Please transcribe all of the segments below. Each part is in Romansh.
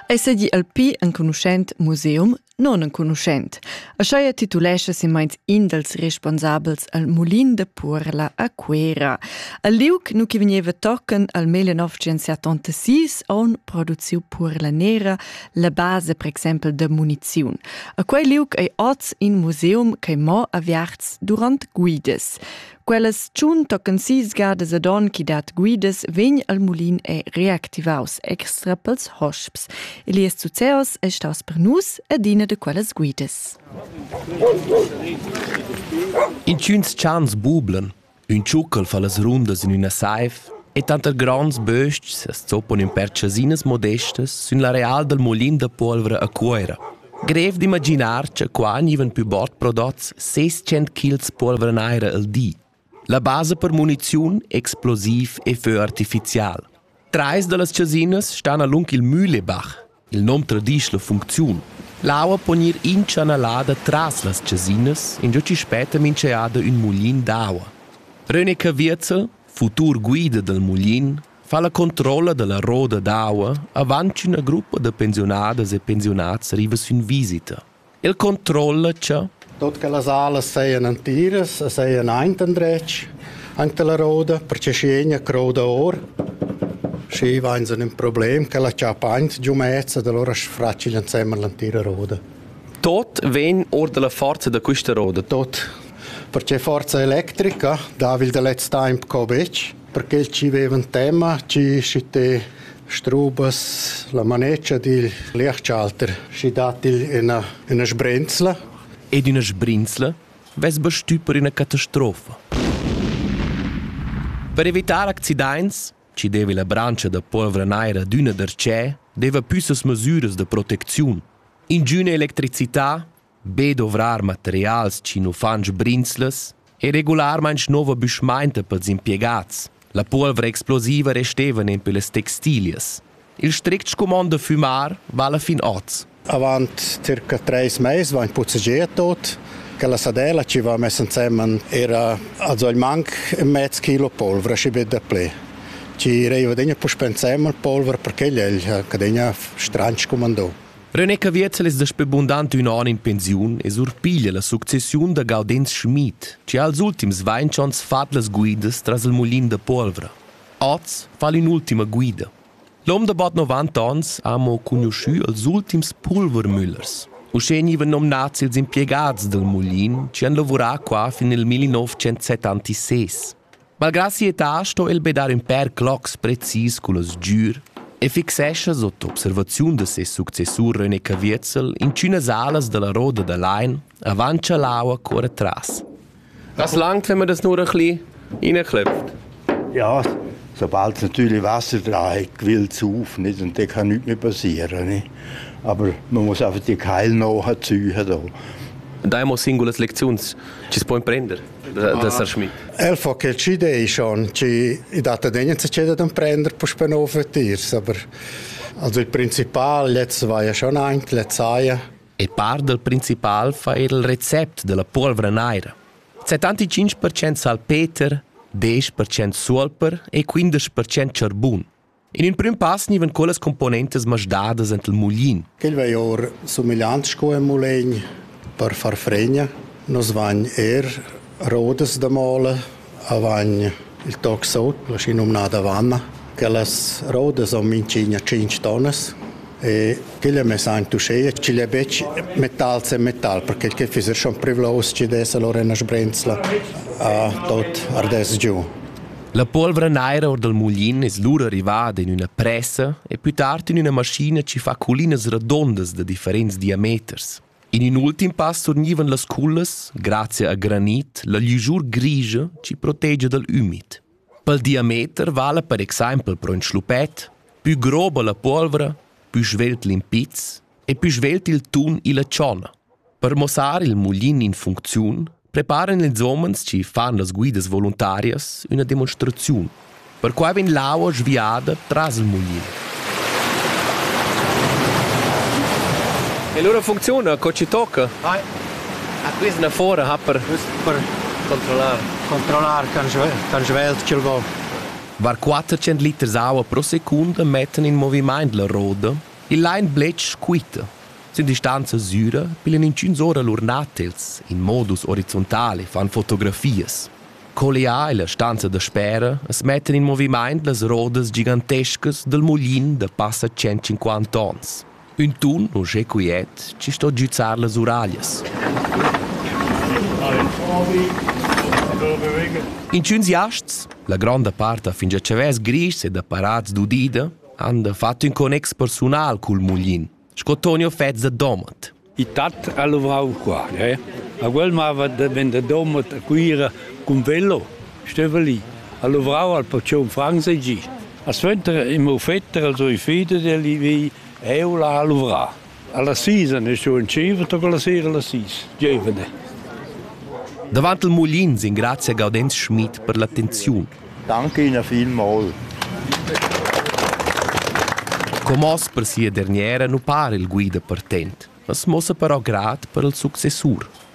Ei sedi el pi enconuschent museum non enconuschent. Aschia titulescha semeins in dals responsabels al mulin de Purla a Cuera. Al liug nu che vegneva tochen al 1986 on produziu Purla Nera la base per exempel de muniziun. A quei liug ei oz in museum che mo aviarts durant guides. Quellas tschun toccan sis gadas ad on chi dat guidas vegn al mulin e reactivaus extra pels hosps. Elias Zuzeos è staus per nus adina de quellas guidas. Intgüns chans bublan, ün tschuccal fa las rundas in üna saif e tanter gronds böstgs as zoppan in perchasinas modestas sün l'areal dal mulin da polvra a Cuoira. Grev d'imaginar cha qua gnivan pü bod prodots ses tschient kils polvra naira al di. La basa per muniziun, explosiv e fö artificial. Trais da las chasinas stan alung il Mühlebach, il nom tradisch la funcziun. L'aua pon ir inchanalada tras las chasinas, ingio chi spetta minch'eada ün muglin d'aua. René Caviezel, futur guida dal muglin, fa la controlla dalla roda d'aua avant ch'üna gruppa da pensiunadas e pensiunats riva sün visita. El controlla cha Tot che las alas seien antiras, seien aint andretg, anche la roda, perché scegna croda or. Schi vain so ün problem che la chapa aint giumezza, da allora sfracil insemmel l'antira roda. Tot ven or dalla forza da questa roda. Tot, perché forza electrica, da vil da letz temp co bec, per quels chi vevan tema chi schite strubas la maneccia dil Liechchalter, schi dat il ina, ina sbrenzla. Ed üna sbrinzla vess bastü per üna catastrofa. Per evitar accidaints, chi deva la brancia da polvra naira d'üna darchè, deva püssas masüras da protecziun. Ingüna electricità be dovrar materials ch'in uffant sbrinzless e regularmaing nouva büschmainta pels impiegats. La puolvra explosiva restevan in pellas textilias. Il strict scumond da fümar vala fin hoz. Avant circa treis mais vain puzzegià tot che la sadella chi va mess insemen era also il manc mezz kilo polvra, schi be daplè. Chi reiva degna puspè insemen polvra perché igl è cadegna stranch scumandò. René Caviezel es daspö bundant ün on in pensiun e surpiglia la successiun da Gaudenz Schmid, chi ha als ultims vainch ons fat las guidas tras il mulin da puolvra. Oz fa'l ün'ultima guida. L'hom da bod 90 ons ha amo cugnuschü als ultims Pulvermüllers. Uschè gnivan nomnats ils impiegats dal mulin chi han lavurà qua fin nel 1976. Malgrà sia età sto el be dar ün pèr clocs precis culla sgür e fixescha sot observaziun da ses successur René Caviezel inchünas alas da la roda da lain avant cha l'aua cuorra tras. As langt, wenn man das nur ein bisschen reinklopft. Ja, sobald natürlich Wasser dran hat, quillt es auf, nicht? Und dann kann nichts mehr passieren. Nicht? Aber man muss einfach die Keil nachziehen. Da. Da haben wir singules Lektions. Ci si può imprendere. da, da Sar Schmid. Er fa che ci dei schon, ci i dat degnen se ceda d'un prender puspe no für tirs, aber also il principal jetzt war ja schon ank, letz saja. E par del principal fa il recept della polvra naira. C'è tanti 5% salpeter, 10% solper e 15% ciarbun. In emprim pass gnivan quellas componentas masdadas ent il mulin. Quel vei or sumigliant sco ein mulegn per far fregna. Nus vain er rodas da mole, avain il toxo, la schi nomnada vanna. Quellas rodas son minchigna 5 tonnas e quelle me san tu sei ci le bec metal se metal perché che fiser schon privlos ci des allora una sbrenzla a tot ardes giù La polvra naira or dal mulin es lura rivada in üna pressa e pü tard in üna maschina chi fa collinas radondas da differents diameters. In ün ultim pass surgnivan las cullas, grazia a granit, la ligiur grigia chi protegia dal ümid. Pel diameter vala per exaimpel pro ün schlupet, pü groba la polvra, pü svelt l'impizz e pü svelt il tun illa tscholla. Per muossar il muglin in funcziun preparan ils homens chi fan las guidas voluntarias üna demonstraziun. Perquai vegn l'aua sviada tras il muglin. E lura funcziuna, co ci tocca? Vai. A quist na fora ha per... Per controllar. Controllar can svelt ch'el vo. Var 400 liters aua pro secunda mettan in movimaint la roda Il lain bletsch quita. Sin distanza süra bilan inchüns ora lur natels in modus orizontal e fan fotografias. Collià illa stanza daspera as mettan in movimaint las rodas gigantescas dal muglin da passa 150 ons. Ün tun uschè quiet chi sto giüzar las uraglias. Inchüns jasts, la gronda part ha fingià chavès grischs ed apparats d'udida, han da fatg ün connex persunal cul muglin, sco Tonio Fetz da Domat. Il tat ha lavrau qua, eh? A quel mava da ven da Domat a Cuira cun velo, steva lì, ha lavrau al pacion Franz e gi. A suenter im offetter als oi feder del vi, eu la ha lavrà. Alla sis ne su in tscheiver toc alla sera alla sis. Giuvene. Davant il mulin s'ingrazia Gaudenz Schmid per l'attenziun. Danke Ihnen vielmals. Comos per sia derniera nu para il guida partent, mas mossa però grat per il successur.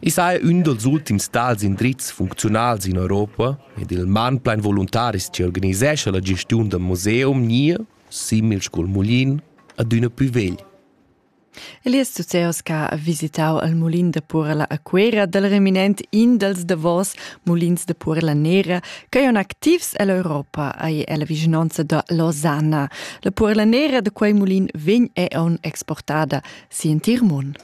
I saja ün dals ultims tals indrizs funcziunals in Europa ed il manplain voluntaris chi organisescha la gestiun dal museum gnir, simil scu'l mulin, adüna plü vegl. Elias Zuzeos che ha visitau il mulin da Purela a Cuera dal reminent in dals davos mulins da Purela Nera ch'eon activs ell'Europa ei ella vischnanca da Losanna. La Purela Nera da quei mulin vegn eon exportada si in tir mun.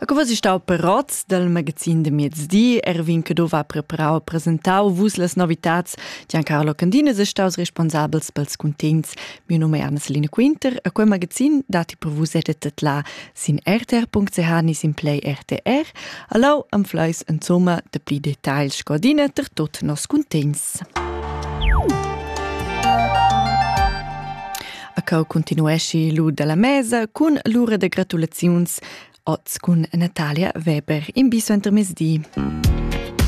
A co was ich stau perats del magazin de mezdi, Erwin Cadova preparau presentau vus las novitats, Giancarlo Candine se staus responsabels pels cuntents. Mio nome è Anna-Selina Quinter, a quel magazin dati per vus edet la Sin rtr.ch ni sin Play RTR allau anfleis insomma de pli detagls scodina ter tot nos cuntegns. A cau continuesci lu dalla mesa cun l'ura de gratulaziuns oz cun Natalia Weber in biso intermezdi. Mm.